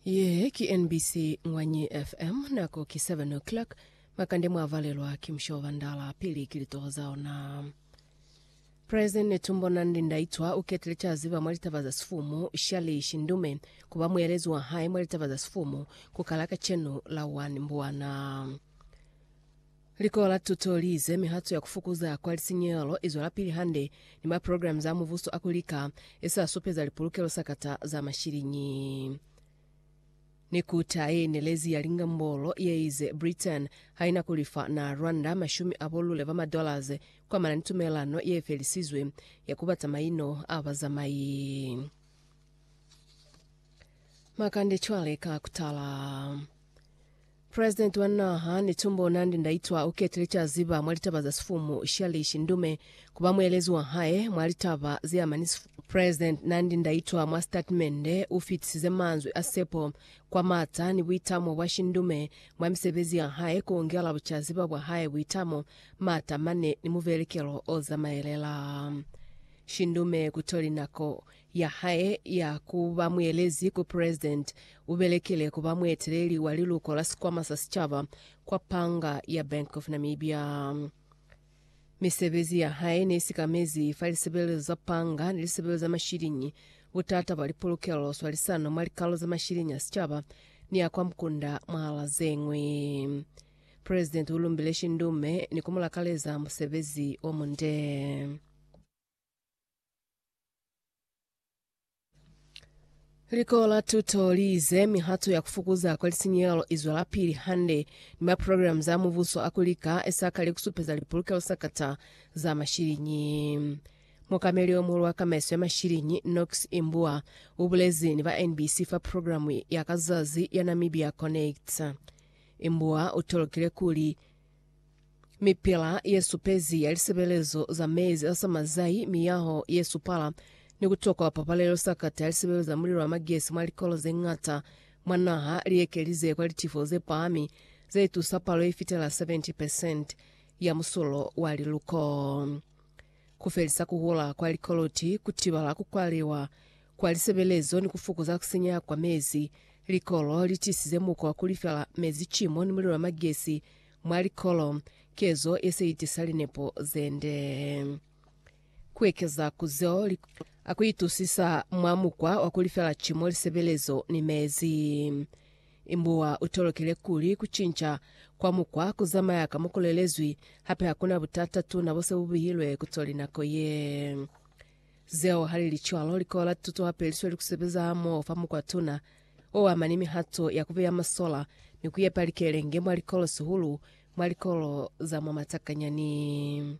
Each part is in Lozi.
Ye ki NBC Ngwanyi FM, nako ki 7 o'clock. Makande mwa valelwa ki Mushobo Bandala, pili ki litoho za ona. President Netumbo Nandi Ndaitwa uketile caziba mwa litaba za sifumu Shirley Shindume kuba muelezi wa hae mwa litaba za sifumu ku kala kacenu la 1 Mbwana. Likolo la tuto li ize mihato ya ku fukuza kwa lisinyehelo i zwelapili hande ni maprograms a mubuso a ku lika e sa supeza lipulukelo sakata za mashiliñi. Ni kuta ye inelezi ya lingambolo ye ize Britain ha i na ku lifa na Rwanda mashumi a bo lule ba ma-dollars ku amana ni tumelelano ye felisizwe ya ku bata maino a bazamai. Makande cwale ka ku tala. President wa naha Netumbo Nandi Ndaitwa ukete licazi ba mwa litaba za sifumu Shirley Shindume kuba muelezi wa hae mwa litaba zeama ni sifumu. President Nandi Ndaitwa mwa sitatimende ufitisize manzwi a sepo kwa mata ni buitamo bwa Shindume mwa misebezi ya hae kuongela bucaziba bwa hae buitamo, mata mane ni muvelekelo ozamaelela. Shindume kutoli nako ya hae ya ku ba muelezi ku President, u belekile ku ba mueteleli wa liluko la Sikwama sa Sicaba kwa panga ya Bank of Namibia. Misebezi ya hae ne sikamezi fa lisebelezo za panga ni lisebelezo za mashiliñi, butata bwa lipolokelo, swalisano mwa likalo za mashiliñi a sicaba ni a kwa mukunda mwahala ze ñwi. President u lumbile Shindume ni ku mu lakaleza musebezi o munde. Likolo la tuto li ize mihato ya ku fukuza kwa lisinyehelo i zwelapili hande ni maprogramu za mubuso a ku lika e sa kali ku supeza lipulukelo sa kata za mashiliñi. Mukameli o muhulu wa kamaiso ya mashiliñi, Knox Imbua, u bulezi ni ba NBC fa programu ya ka zazi ya Namibia Connects. Imbua u tolokile kuli, Mipila ye supezi ya lisebelezo za mezi a samazai, miyaho ye supala, ni ku tokwa pabalelo sakata ya lisebelezo za mulilo wa magesi mwa likolo ze ñata mwa naha li ekelize kwa litifo ze pahami ze itusa palo ye fitela 70 percent ya musulo wa liluko, ku felisa ku hula kwa likoloti, ku tibala ku kwaliwa kwa lisebelezo ni ku fokoza ku sinyeha kwa mezi. Likolo li tisize mukwa wa ku lifela mezi cimo ni mulilo wa magesi mwa likolo, kezo ye se itisa linepo ze nde. Ku ekeza ku zeo, li a ku itusisa mwa mukwa wa ku lifela cimo, lisebelezo ni mezi. Imbuwa u tolokile kuli ku cinca kwa mukwa ku zamaya ka mo ku lelezwi, hape ha ku na butata tuna bo se bu bihilwe ku co linako ye. Zeo ha li li cwalo, likola la tuto hape li sweli ku sebeza hamoho fa mukwa tuna o ama ni mihato ya ku beya masola ni ku yepa likelenge mwa likolo, sihulu mwa likolo za mwa matakanyani.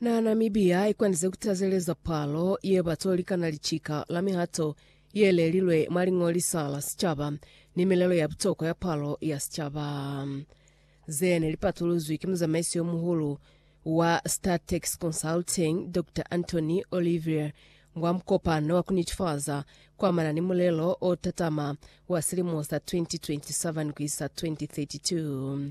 Na Namibia ikwandize ku tazeleza palo ye ba to likana licika la mihato ye lelilwe mwa Liñolisa la Sicaba ni milelo ya butokwa ya palo ya sicaba. Ze ne li patuluzwi ki muzamaisi yo muhulu wa Statec Consulting, Doctor Anthony Olivier, mwa mukopano wa ku nitifaza kwa amana ni mulelo o tatama wa silimo sa 2027 ku isa 2032.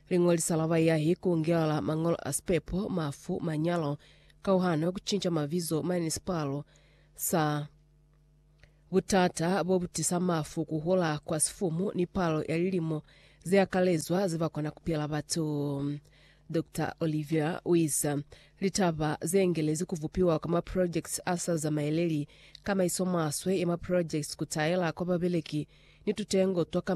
Liñolisa la baiyahi ku ngelala mañolo a sipepo, mafu, manyalo, kauhano, ku cinca mabizo, municipal, sa. Butata bobutisa mafu, kuhula kwa sifumu ni palo ya lilimo zeakalezwa zebakwa na kupila batu. Doctor Olivier uize, Litaba zeengelezi kubupiwa kwa maprojekiti asa zamaeleli, kamaiso maswe ya maprojekiti, kutaela kwa babeleki ni tutengo twa kamaiso